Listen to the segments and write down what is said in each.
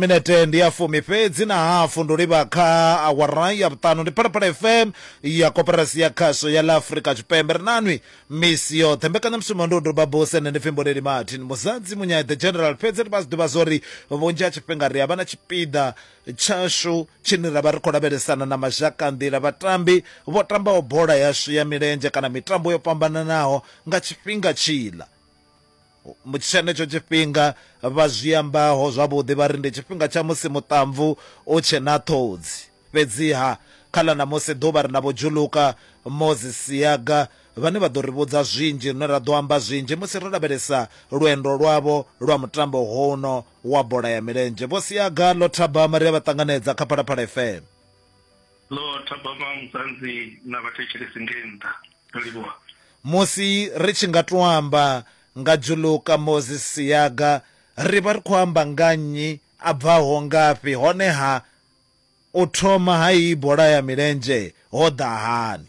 Minete ndi ya fumi fhedzi na hafu ndi u livha kha awara ya vhuṱanu. Ndi Phalaphala FM ya Koporasi ya Khasho ya ḽa Afrika Tshipembe. Ri na nwi misi yoṱhe. Mbekanyamushumo ndi u doba buse. Nṋe ndi pfi Mboneli Martin Muzadzi Munyai the General. Fhedzi ri vha zwi ḓivha zwori vhunzhi ha tshifhinga ri a vha na tshipiḓa tshashu tshine ra vha ri khou lavhelesana na mazhakanḓila, vhatambi vho tambaho bola yashu ya milenzhe kana mitambo yo fhambananaho nga tshifhinga tshiḽa. tshenetsho tshifhinga vha zwi ambaho zwavhuḓi vha ri ndi tshifhinga tsha musi muṱamvu u tshe na ṱhodzi. Fhedziha kha ḽa ṋamusi ḓuvha ri na Vho Juluka Moses Siyaga vhane vha ḓo ri vhudza zwinzhi lune ra ḓo amba zwinzhi musi ro lavhelesa lwendo lwavho lwa mutambo hono wa bola ya milenzhe. Vho Siyaga, Ḽo Thabama ri a vha ṱanganedza kha Phalaphala FM. ḽo thabama musanzi na vhathetshelesi nge nnḓa ndo livhuwa musi ri tshi nga tou amba nga Juluka Moses Siyaga ri vha ri khou amba nga nnyi, a bvaho ngafhi honeha u thoma ha iyi bola ya milenzhe ho ḓa hani?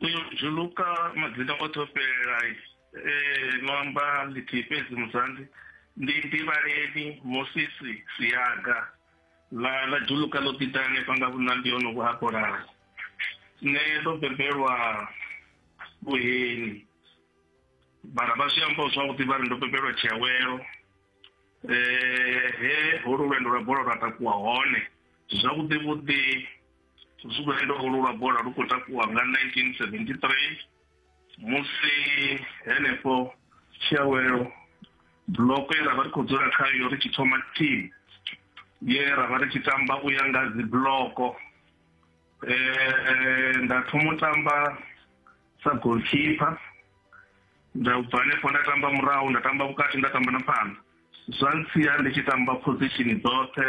Uyo Juluka madzina oṱhe o fhelela e no amba ḽithihi fhedzi musanzi ndi Nḓivhaleni Moses Siyaga. Vha vha dzhuluka ḽo ḓi ḓa hanefha nga vhunambi ho no vhu hapolaho. Nṋe ndo bebelwa vhuheni mara vha zwi amba zwavhuḓi vha ri ndo bebelwa tshiawelo eh he holu lwendo lwa bola lwa takuwa hone zwavhuḓi vhuḓi lwendo holu lwa bola lu khou takuwa nga 1973 musi henefho tshiawelo buloko ye ra vha ri khou dzula khayo ri tshi thoma team ye ra vha ri tshi tamba u ya nga dzi buloko um nda thoma u tamba sa goalkeeper nda bva hanefho nda tamba murahu nda tamba vhukati nda tamba na phanḓa zwa ntsia ndi tshi tamba position dzoṱhe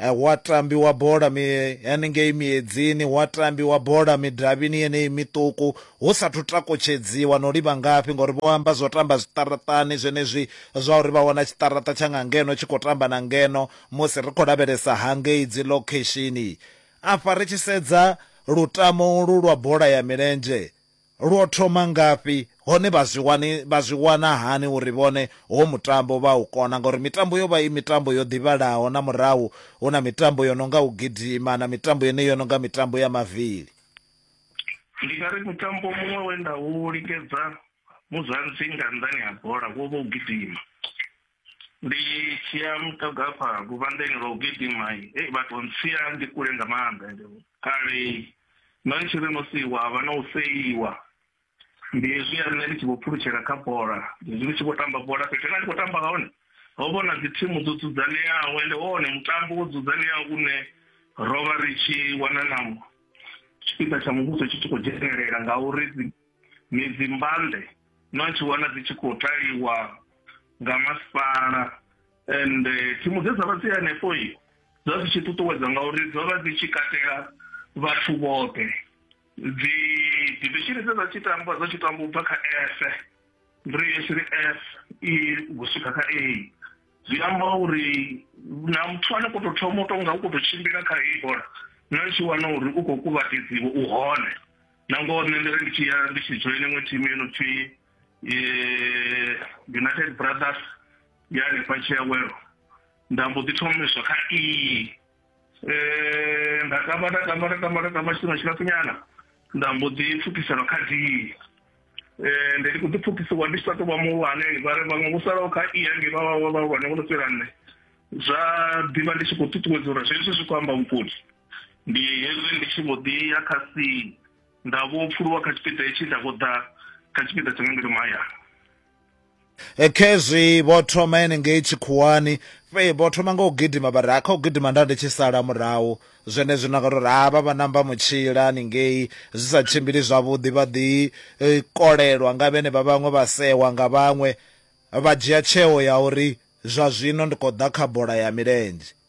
Hu a tambiwa bola mi, haningei miedzini, hu a tambiwa bola midavhini yeneyi miṱuku, hu sa athu takutshedziwa na u livha ngafhi, ngauri vho amba zwa u tamba zwiṱaraṱani zwenezwi zwa uri vha wana tshiṱaraṱa tsha nga ngeno tshi khou tamba na ngeno musi ri khou lavhelesa hangei dzi lokheshini. Afha ri tshi sedza lutamo ulwu lwa bola ya milenzhe, Lwo thoma ngafhi, hone vha zwi wani, vha zwi wana hani uri vhone ho mutambo vha u kona? Ngauri mitambo yo vha i mitambo yo ḓivhalaho na murahu hu na mitambo yo no nga u gidima na mitambo yeneyi yo no nga mitambo ya mavili. Ndi nga ri mutambo muṅwe we nda u likedza muzansi nga nnḓani ha bola wo vha u gidima. ndi tshiya muṱoga hafha luvhanḓeni lwa u gidima ei vhathu ntsia ndi kule nga maanḓa ende kale no tshi ri no siiwa havha na u seiwa ndi hezwi ya nṋe ndi tshi vho pfulutshela kha bola ndi hezwi ndi tshi vho tamba bola fhethu nga ndi khou tamba hone ho vhona dzi thimu dzo dzudzanyeaho ende wone mutambo wo dzudzanyeaho une ro vha ri tshi wana na tshipiḓa tsha muvhuso tshi tshi khou dzhenelela ngauri midzi mbande no tshi wana dzi tshi khou taliwa nga masipala and eh, thimu dze dza vha dzi hanefho i dza dzi tshi ṱuṱuwedza ngauri dzo vha dzi tshi katela vhathu vhoṱhe dzi divishini dze dza tshi tamba dzo tshi tamba u bva kha f ri shiri f i u swika kha a zwi amba uri na muthu ane kho to thoma u tonga u kho to tshimbila kha heyi bola na tshi wana uri u khou kuvhatedziwa u hone na ngoho nṋe ndi ri ndi tshi ya ndi tshi joina iṅwe thimu yo no pfhi united brothers ya hanefha tshiawelo nda mbo ḓi thomiswa kha iyi um nda tamba nda tamba nda tamba nda tamba tshifhinga tshilapfunyana nda mbo ḓi pfukisela kha d um ndi ndi khou ḓi pfukisiwa ndi tshi sa tou vha muhulwane vha ri vhaṅwe vho salaho kha i yange vha vhahulwane vho no fhira nṋe zwa ḓivha ndi tshi khou ṱuṱuwedza uri zwezwi zwi khou amba vhukoni ndi hezwi ndi tshi vho ḓi ya kha si nda vho pfuluwa kha tshipiḓa hetshi nda vho ḓa kha tshipiḓa tsha nga ngeno mahayani e, khezwi vho thoma henengei tshikhuwani fhe vho thoma nga u gidima vha ri ha kha u gidima nda ndi tshi sala murahu zwenezwi na nga uri ha vha vha namba mutshila haningei zwi sa tshimbili zwavhuḓi vha ḓi e, kolelwa nga vhene vha vhaṅwe vha sewa nga vhaṅwe vha dzhia tsheo ya uri zwa zwino ndi khou ḓa kha bola ya milenzhe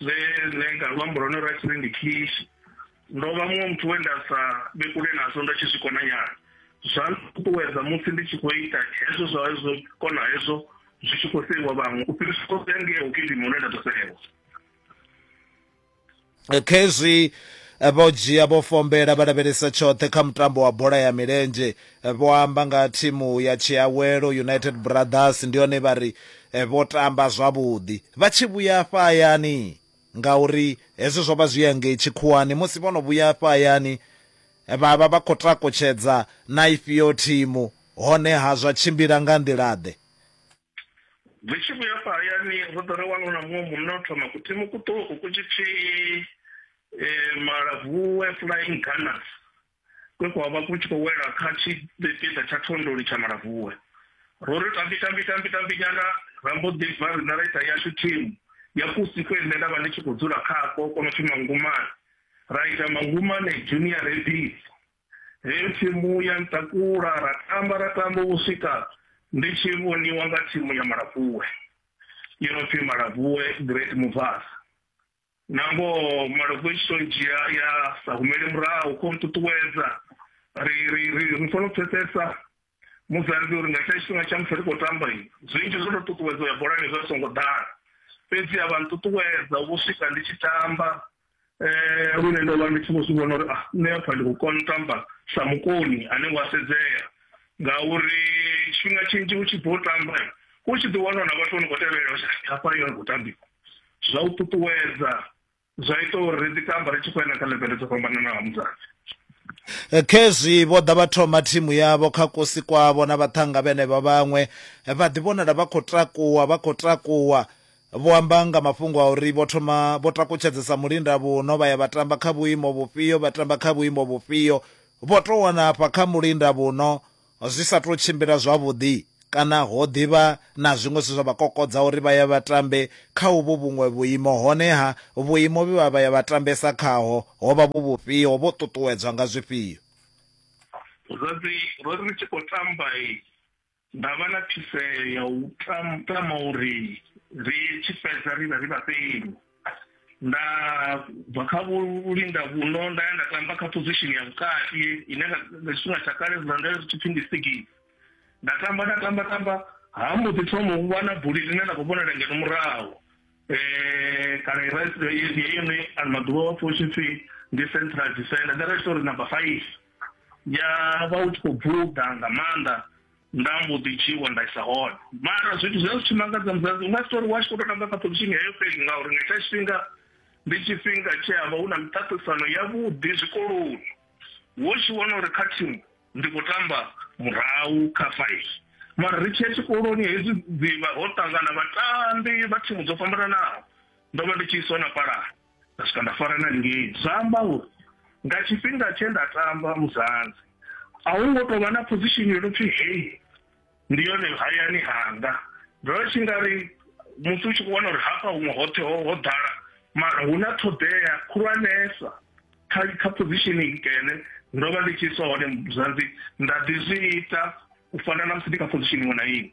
zwe nṋe nga luambo lwa hone lwa tshine ndi kish ndo vha muṅwe muthu we nda sa vhe kule nazwo nda tshi zwi kona nyana zwa nṱuṱuwedza musi ndi tshi khou ita hezwo zwa hezwo kona hezwo zwi tshi khou seiwa vhaṅwe u fhirisa khou ya ngeo kilima hune nda ḓo seiwa khezwi vho dzhia vho fombela vha lavhelesa tshoṱhe kha mutambo wa bola ya milenzhe Vho amba nga ha thimu ya Tshiawelo United Brothers ndi hone vha ri vho tamba zwavhuḓi vha tshi vhuya afha hayani ngauri hezwi zwo vha zwi ya ngei tshikhuwani musi vho no vhuya afha hayani vha vha vha khou takutshedza na ifhio thimu honeha zwa tshimbila nga nḓila-ḓe? Ri tshi vhuya afha hayani ro ḓa ra wana hu na muṅwe munna o thoma kuthimu kuṱuku ku tshi pfi Malavhuwe Flying Gunners kwe kwa vha ku tshi khou wela kha tshipiḓa tsha thondoni tsha Malabvuwe. Ro ri tambi tambi tambi tambi nyana ra mbo ḓi bva riṋe ra ita yashu thimu ya kusi kwe nṋe nda vha ndi tshi khou dzula khako ko no pfi Mangumane, ra ita Mangumane Junior Rabbits. Heyo thimu ya ntakula ra tamba ra tamba u swika ndi tshi vhoniwa nga thimu ya Malabvuwe yo no pfi Malabvuwe Great Movers. na ngoho malofha i tshi to dzhia ya sa humele murahu kho nṱuṱuwedza ri ri ri ri fanela u pfesesa muzanzi uri nga tsha tshifhinga tsha musi ri khou tamba i zwinzhi zwo to ṱuṱuwedza ya bolani zwa songo ḓala fhedzi a vha nṱuṱuwedza vho swika ndi tshi tamba um lune ndo vha ndi tshi vho zwi vhona uri a ah, nṋe apfa ndi khou kona u tamba sa mukoni ane wa sedzea ngauri tshifhinga tshinzhi u tshi bva u tamba u tshi ḓi wana na vhathu vho no khou tevhelela hafha yo khou tambiwa zwa u ṱuṱuwedza zwa ita uri ri ḓi tamba ri tshi khou enda kha levele dzo fhambananaho mudzadzi Eh, khezwi vho ḓa vha thoma thimu yavho kha kosi kwavho na vhaṱhanga vhenevha vhaṅwe eh, vha ḓi vhonala vha khou takuwa vha khou takuwa vho amba nga mafhungo a uri vho thoma vho takutshedzesa mulinda vhuno vha ya vha tamba kha vhuimo vhufhio vha tamba kha vhuimo vhufhio vho tou wana afha kha mulinda vhuno zwi sa tou tshimbila zwavhuḓi kana ho ḓi vha na zwiṅwe zwe zwa vha kokodza uri vha ye vha tambe kha uvhu vhuṅwe vhuimo, hone-ha vhuimo vhe vha vha ya vha tambesa khaho ho vha vhu vhufhio, vho ṱuṱuwedzwa nga zwifhio? Zwadzi ro ri ri tshi khou tamba, nda vha na phiseo ya u tama uri ri tshi fhedza ri vhe ri vhafheli. nda bva kha vhulinda vhuno nda ya nda tamba kha position ya vhukati ine nga tshifhinga tsha kale zwa nda zwi tshipfi ndi sigisi nda tamba nda tamba tamba ha mbo ḓi thoma u vha na buli ḽine nda khou vhonela ngeno murahu um kana iraiyone ano maḓuvha wa pfha u tshi pfi ndi central defender nda ri tshi tou ri number five ya vha u tshi khou bvuḓa nga maanḓa nda mbo ḓi dzhiwa nda isa hone mara zwithu zwi a zwi tshi mangadza musadzi unga si tori wa tshi khou tou tamba kha position heyo fhedzi ngauri nga tsha tshifhinga ndi tshifhinga tshe ha vha hu na miṱaṱisano yavhuḓi zwikoloni wo tshi wana uri kha thimu ndi khou tamba murahu kha five mara ri tshiya tshikoloni hezwi dzivha ho ṱangana vhatambi vha thimu dzo fhambananaho ndo vha ndi tshi iswa na palani nda swika nda fara na ngei zwa amba uri nga tshifhinga tshe nda tamba muzanzi a hu ngo tou vha na position yo no pfhi hei ndi yone hayani hanga ndo tshi nga ri musi u tshi khou vhona uri hafha huṅwe hoṱhe ho ho ḓala mara hu na ṱhoḓea khulwanesa kha kha position ikene ndo vha ndi tshi iswa hone muzanzi nda ḓi zwi ita u fana na musi ndi kha position iṅwe na iṅwe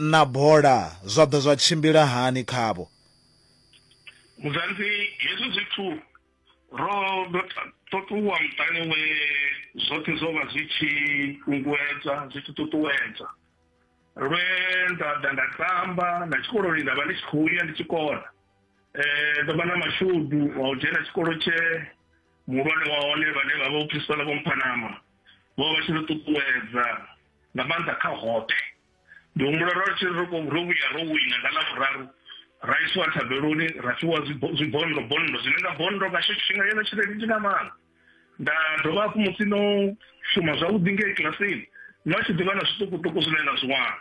Na bola zwa ḓa zwa tshimbila hani khavho? Muzanzi, Hezwi zwithu ro ḓo to ṱuwa muṱani we zwoṱhe zwo vha zwi tshi kunguwedza zwi tshi ṱuṱuwedza, lwe nda ḓa nda tamba, na tshikoloni nda vha ndi tshi khou ya ndi tshi kona. Ndo vha na mashudu a u dzhena tshikolo tshe muhulwane wa hone vhane vha vha vho Principal Vho Mphanama. vho vha tshi ri ṱuṱuwedza nga maanḓa kha hoṱhe ndi humbula ro tshi ro ro vhuya ro wina nga ḽavhuraru ra isiwa thabeloni ra fhiwa zwibondo bondo zwine nga bondo nga tsho tshifhinga yone tshelede ndi nga maanḓa nda dovha hafhu musi no shuma zwavhuḓi ngei kilasini no tshi ḓivha na zwiṱukuṱuku zwine na zwi wana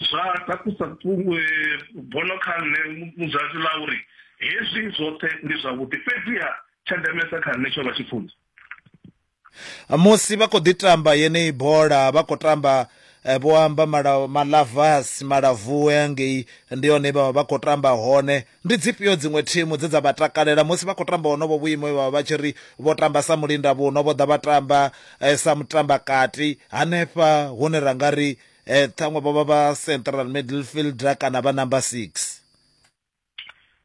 zwa takusa eh, bono kha nṋe mudzadzi ḽa uri hezwi zwoṱhe ndi zwavhuḓi fhedziha tsha ndemesa kha nṋe tsho vha tshipfunzo Musi vha khou ḓi tamba yeneyi bola vha khou tamba eh, vho amba malavas malavuwe angei ndi hone vha vha khou tamba hone ndi dzifhio dziṅwe thimu dze dza vha takalela musi vha khou tamba honovho vhuimo vha vha tshi ri vho tamba sa mulinda vhuno vho ḓa vha tamba eh, sa mutamba kati hanefha hune ra nga ri eh, ṱhaṅwe vho vha vha central midfielder kana vha number six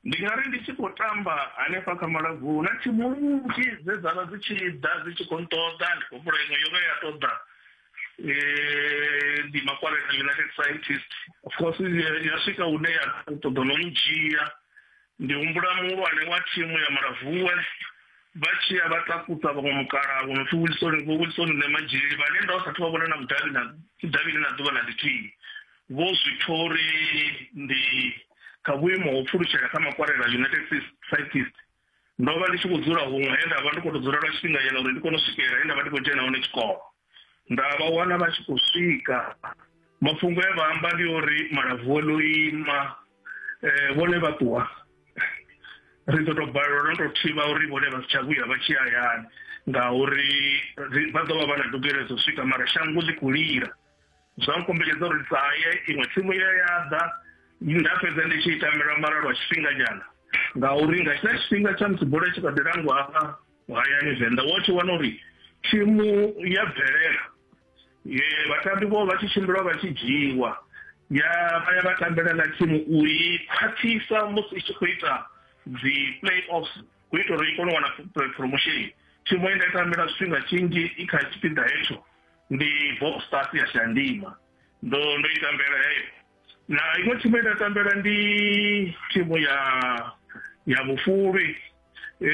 ndi nga ri ndi tshi khou tamba hanefha kha malaguni na thimu nnzhi dze dza vha dzi tshi ḓa dzi tshi khou nṱoḓa ndi khou humbula iṅwe yo vha ya ṱoḓa um ndi makwarela united scientist of course ya swika hune ya ṱoḓa no ndzhia ndi humbula muhulwane wa thimu ya malavuwe vha tshi ya vha takusa vhaṅwe mukala vho no pfi wilson vho wilson ne madzhili vhane nda vha sathu vha vhona na mudavhi na mudavhini na ḓuvha na ḽithihi Vho Zwithori ndi kha vhuimo ho pfulutshela kha makwarela United Cyclists. Ndo vha ndi tshi khou dzula huṅwe he nda vha ndi khou tou dzula lwa tshifhinga nyana uri ndi kone u swikelela he nda vha ndi khou dzhena hone tshikolo. Nda vha wana vha tshi khou swika. Mafhungo e vha amba ndi uri malapfu o no ima vhone vha ṱuwa ri ḓo tou balelwa no tou thivha uri vhone vha si tsha vhuya vha tshi ya hayani ngauri vha ḓo vha vha na ndugelo dza u swika mara shango ḽi khou lila. zwa nkombetshedza uri ndi sa ye iṅwe tsimu ye ya ḓa nda fhedza ndi tshi itamela mara lwa tshifhinganyana ngauri nga tshila tshifhinga tsha musi bola tshi kha ḓi langwa hafha hayani venḓa wo tshi wana uri thimu ya bvelela vhatambi vho vha tshi tshimbila vha tshi dzhiiwa ya vha ya vha tambela na thimu u i khwaṱhisa musi i tshi khou ita dzi play offs u ita uri i kone u wana promotion thimu ye nda i tambela tshifhinga tshinzhi i kha tshipiḓa hetsho ndi bob stas ya shandima ndo ndo i tambela heyo na iṅwe thimu ye nda tambela ndi thimu ya ya vhufulwi Eh,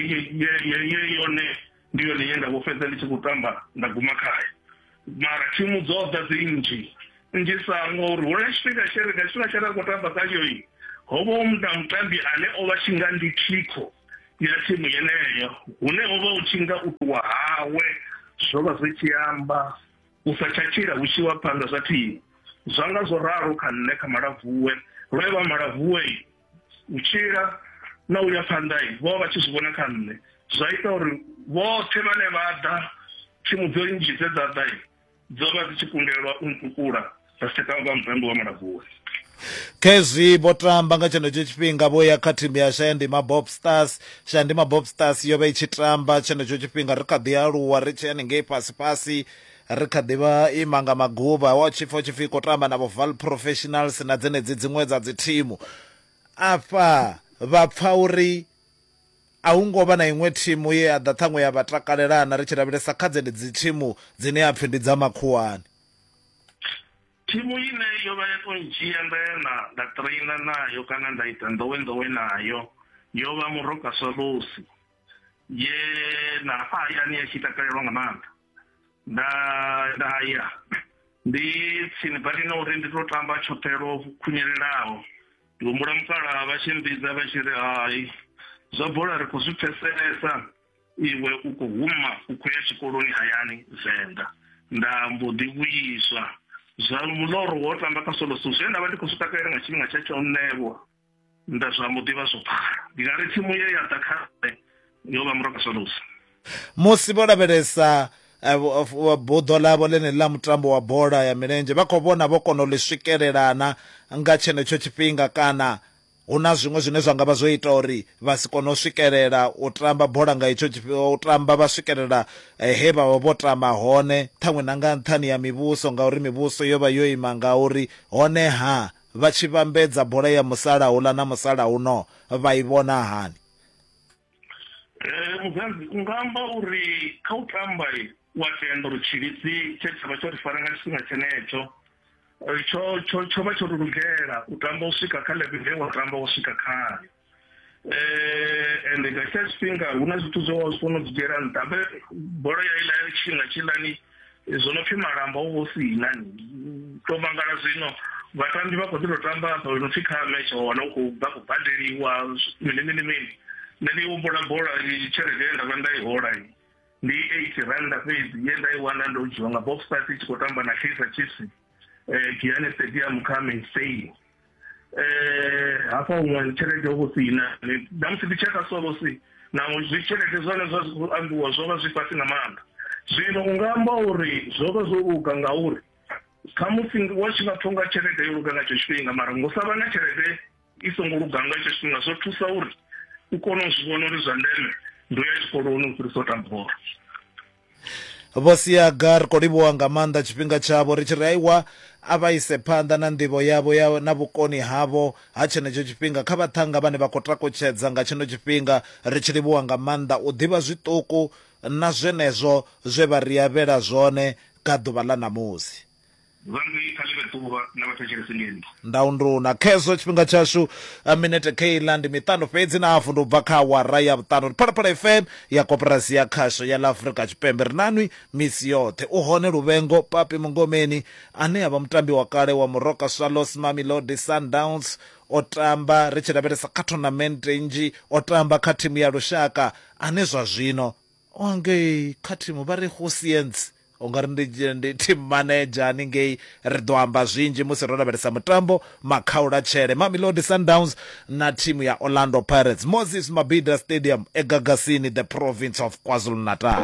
ye- ye- ye- ye yone ndi yone ye nda vho fhedza ndi tshi khou tamba nda guma khayo mara thimu dzo ḓa dzi nnzhi nnzhi sango uri hu na tshifhinga tshe ri nga tshifhinga tshe ra khou tamba khayo i ho vha hu na mutambi ane o vha tshi nga ndi thikho ya thimu yeneyo hune ho vha hu tshi nga u ṱuwa hawe zwo vha zwi tshi amba u sa tsha tshila hu tshi wa phanḓa zwa thimu zwa nga zwo ralo kha nṋe kha malavuwe lwe vha malavuwe u tshila na u ya phanḓa vho vha tshi zwi vhona kha nṋe zwa ita uri vhoṱhe vhane vha ḓa thimu dzo nnzhi dze dza ḓa Dzo vha dzi tshi kundelwa u ntukula dza si tsha tamba mutambi wa Malabula. khezwi vho tamba nga tshenetsho tshifhinga vho ya kha thimu ya shayandima bob stars shayandima bob stars yo vha i tshi tamba tshenetsho tshifhinga ri kha ḓi aluwa ri tshi haningei fhasi fhasi ri kha ḓi vha ima nga maguvha wa tshipfa u tshipfi khou tamba na vho val professionals na dzenedzi dziṅwe dza dzi thimu afha vha pfa uri A hu ngo vha na iṅwe thimu ye ya ḓa ṱhaṅwe ya vha takalelana ri tshi lavhelesa kha dzenedzi thimu dzine ha pfi ndi dza makhuwani. Thimu ine yo vha ya tou ndzhia nda ya na nda trainer nayo kana nda ita nḓowenḓowe nayo yo vha Moroka Swallows ye na hafha hayani ya tshi takalelwa nga maanḓa. nda nda ya ndi tsini badi na uri ndi to tamba tshoṱhe lwo khunyelelaho ndi humbula mukala vha tshi mbidza vha tshi ri hai zwa bola ri khou zwi pfeselesa iwe u khou huma u khou ya tshikoloni hayani venḓa nda mbo ḓi vhuiswa zwa muloro wo tamba kha solo so zwe nda vha ndi khou zwi takalela nga tshifhinga tsha tsho ṋewa nda zwa mu ḓivha zwo pfala ndi nga ri tsimu ye ya ḓa kha nṋe yo vha muranga solusa musi vho lavhelesa eh, buḓo ḽavho ḽeneḽi ḽa mutambo wa bola ya milenzhe vha khou vhona vho kona u ḽi swikelelana nga tshenetsho tshifhinga kana hu na zwiṅwe zwine zwa nga vha zwo ita uri vha si kone u swikelela u tamba bola nga itsho tshifhinga u tamba vha swikelela eh, he vha vha vho tama hone ṱhaṅwe na nga nṱhani ya mivhuso ngauri mivhuso yo vha yo ima nga uri honeha Vha tshi vhambedza bola ya musalauḽa na musalauno vha i vhona hani? Muzanzi, U nga amba uri kha u tamba wa tenda uri tshivhidzi tshe tsha vha tsho ri fara nga tshifhinga tshenetsho tsho vha tsho ri lugela u tamba u swika kha ḽeveḽe ye wa tamba wo swika khayo. eh and nga tsha tshifhinga hu na zwithu zwo zwi kono dzigera nṱha be bolo ya ila ya tshinga tshilani eh, zwo no pfi malamba u vho si na to mangala zwino vhatambi vha kho ḓi to tamba hafha no pfi kha match wa wana u khou bva ku badeliwa mini mini mini nṋe ndi humbula bola tshelede ye nda vha nda i hola ndi eight randa fhedzi ye nda i wana ndo dzhiwa nga bob stars i tshi khou tamba na kaizer chiefs um giane stadium kha mainstay eh hafha huṅwe tshelede ho vho si ina na musi ndi tsheka so vho si naho zwi tshelede zwone zwa khou ambiwa zwo vha zwi fhasi nga maanḓa zwino u nga amba uri zwo vha zwo luga ngauri khamusi wa tshi nga pfha unga tshelede yo luga nga tsho tshifhinga mara ngo sa vha na tshelede i songo luga nga tsho tshifhinga zwo thusa uri u kone u zwi vhona uri zwa ndeme ndo ya tshikoloni u fhirisa u tamba bola vho siaga ri khou livhuwa nga maanḓa tshifhinga tshavho ri tshi ri aiwa a vha ise phanḓa na nḓivho yavho ya na vhukoni havho ha tshenetsho tshifhinga kha vhaṱhanga vhane vha khou takutshedza nga tshino tshifhinga ri tshi livhuwa nga maanḓa u ḓivha zwiṱuku na zwenezwo zwe vha ri avhela zwone ka ḓuvha ḽa ṋamusi Vhangwi kha ḽi vhe ḓuvha na vhathetshelesi ndi nṋe. Ndaundu na khezwo tshifhinga tshashu minete kheiḽa ndi miṱanu fhedzi na hafu ndi u bva kha awara ya vhuṱanu. Ndi Phalaphala FM ya Koporasi ya Khasho ya ḽa Afrika Tshipembe. Ri na nwi misi yoṱhe. U hone Luvhengo Papi Mungomeni ane a vha mutambi wa kale wa Moroka Swallows, Mamelodi Sundowns, o tamba ri tshi lavhelesa kha thonamente nnzhi, o tamba kha thimu ya lushaka ane zwa zwino wa ngei kha thimu vha ri Hosientsi u nga ri ndi, ndi team manager haningei ri ḓo amba zwinzhi musi ro lavhelesa mutambo makhaula tshele mamelodi sundowns na thimu ya orlando pirates moses mabida stadium egagasini the province of kwazulu-natal